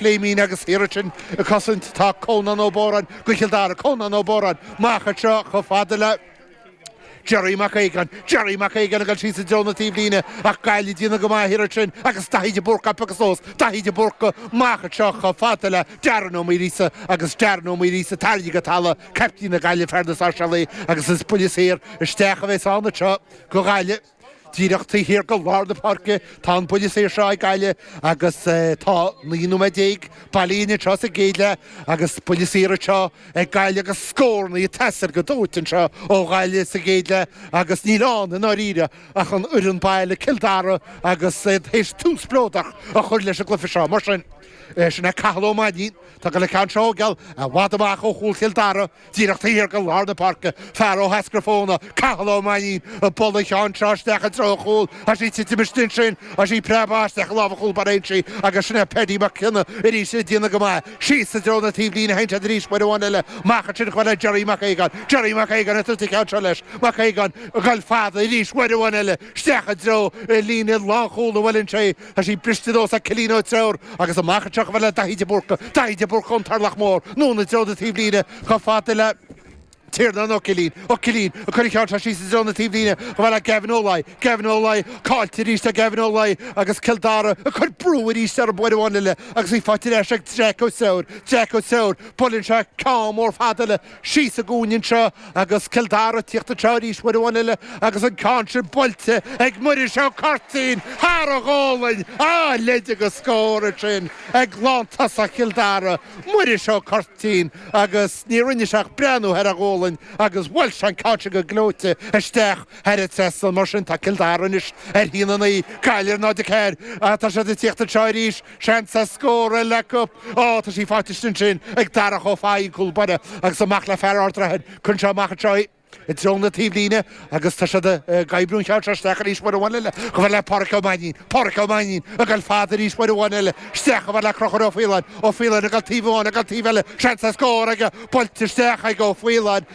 Pléimín agus thiar ansin ag cosaint tá Conan Ó Bóráin do Chill Dara Conan Ó Bóráin, amach anseo chomh fada le Jerry Mac Aogáin Jerry Mac Aogáin ag dul síos i dtreo na taobhlíne ach Gaillimh ag déanamh go maith thiar ansin agus Daithí de Búrca ag agus ós Daithí de Búrca, amach anseo chomh fada le Darren Ó Muiríosa agus Darren Ó Muiríosa, tarraingthe go talamh, caiptín na Gaillimhe, fear na Sáirséalach agus is buille saor isteach a bheas ann anseo go Gaillimh. Díreach taobh thiar de lár na páirce tá an buille saor seo ag Gaillimh agus tá 19 nóiméad bailithe anseo sa gcéad leath agus buille saor anseo ag Gaillimh agus scórannaí ag teastáil go dóite anseo ó Ghaillimh sa gcéad leath agus níl ann i ndáiríre ach an fhoireann baile Cill Dara agus iad théis tús spleodrach a chur leis an gcluiche seo. Mar sin, sin é Cathal Ó Mainnín, atá ag goil an ceann seo a thógáil, i bhfad amach ó chúl Chill Dara, Díreach taobh thiar de lár na páirce, fear Áth Eascrach-Fothaine, Cathal Ó Mainnín, ag bualadh an cheann seo isteach i dtreo an chúil, tá sí ag titim istigh ansin, tá sí ag preabadh isteach i lámha an chúl báire ansin agus sin é Paddy McKenna arís ag déanamh go maith. Síos i dtreo na taobhlíne a théann siad arís, uair amháin eile, amach ansin chomh fada le Gerry Mac Aogáin. Gerry Mac Aogáin ag tabhairt an cheann seo leis. Mac Aogáin, ag goil fada arís uair amháin eile, isteach i dtreo líne lánchúl na bhFuilainseaigh. Tá sí briste anuas ag Cillian Ó Treabhair agus amach anseo chomh fada le Daithí de Búrca, Daithí de Búrca ón Turlach Mór, anonn i dtreo na taobhlíne chomh fada le Tiarnán Ó Cillín, Ó Cillín ag cur an cheann seo síos i dtreo na taobhlíne chomh fada le Gavin Ó Laoi, Gavin Ó Laoi caillte arís ag Gavin Ó Laoi agus Cill Dara ag cur brú arís ar an bhfoireann eile agus í faighte ar ais ag Jeaic Ó Treabhair, Jeaic Ó Treabhair, buaileann sé ceann mór fada eile. Síos sa gcúinne anseo agus Cill Dara ag tíocht anseo arís, uair amháin eile agus an ceann sin buailte ag Muiris Ó Cuirtín thar a ghualainn! A leithéid de scór ansin ag lántosach Chill Dara, Muiris Ó Cuirtín agus ní rinne sé ach breathnú thar a ghualainn agus bhuail sé an ceann sin go gleoite isteach thar an trasnán. Mar sin, tá Cill Dara anois ar 1, 9, Gaillimh ar 0, 4. Tá siad ag tíocht anseo arís. Seans ar scór eile acu. Ó, tá sí faighte istigh ansin ag Darach Ó Fathaigh, an cúl báire, agus amach le fear Ard Raithin, cuireann sé amach anseo í i dtreo na taobhlíne agus tá siad ag oibriú an cheann seo isteach arís uair amháin eile, chomh fada le Páraic Ó Mainnín. Páraic Ó Mainnín ag goil fada arís uair amháin eile, isteach chomh fada le Crochúr Ó Faoláin. Ó Faoláin ag goil taobh amháin, ag goil taobh eile, seans ar scór aige, buailte isteach ag Ó Faoláin.